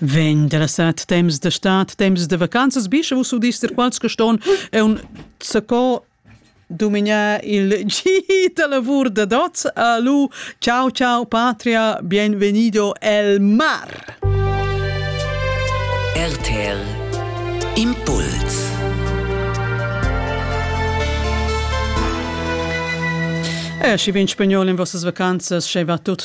Vegn della sat temps da stat, temps da vacanzas, bischa vus udis dir quals che ston un zacco dumignar il gi da lavur da Dot. Alu, ciao ciao patria, bienvenido el mar. RTL Impuls E eh, schi vin spagnol in vossas vacanzas, sche va tut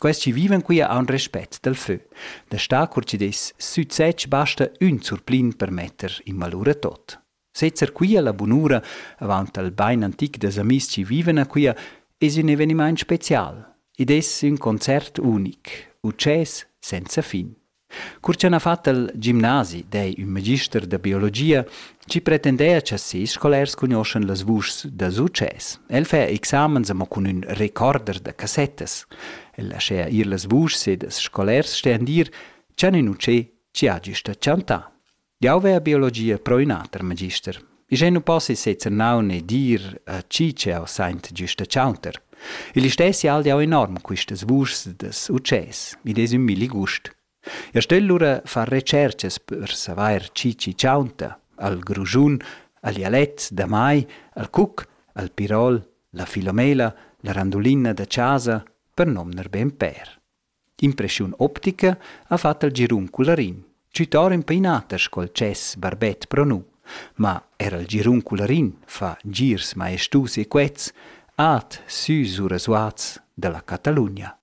Quels chi vivan quia haun respet dal fö. Da star cur chi'd es success basta ün surplin per metter in valur a tot. Sezzer quia la bunura avaunt al bain antic dals amis chi vivan a quia es ün evenimaint special. Id es ün concert unic, utschès senza fin. Cur cha n'ha fat il gimnasi d'ei ün magister da biologia, chi pretendea cha ses scolars cugnoschan las vuschs da success. El fa examens amo cun ün recorder da cassettas. El laschea ir las vuschs ed ils scolars stean dir, cha nin utschè chi ha güsta chantà. Jau vea biologia pro ün'ata per magister. Ischè nu possa sezer naun e dir a chi ch'eau saint giüsta chaunter. Il istessi hal jau enorm quistas vuschs das utschès, id es ün milli gust. Eu stögl lura far retscherchas per savair chi chi chaunta, al grujun, al dialett da mai, al cuc, al pirol, la filomela, la randulina da chasa, per nomner be ün pêr. D'impressiun optica ha fat il girun cularin, tschüttar empainater sco'l tschess barbet pro nu. Ma er il girun cularin fa girs maestus e quets, at sü sura Zuaz da la Catalugna.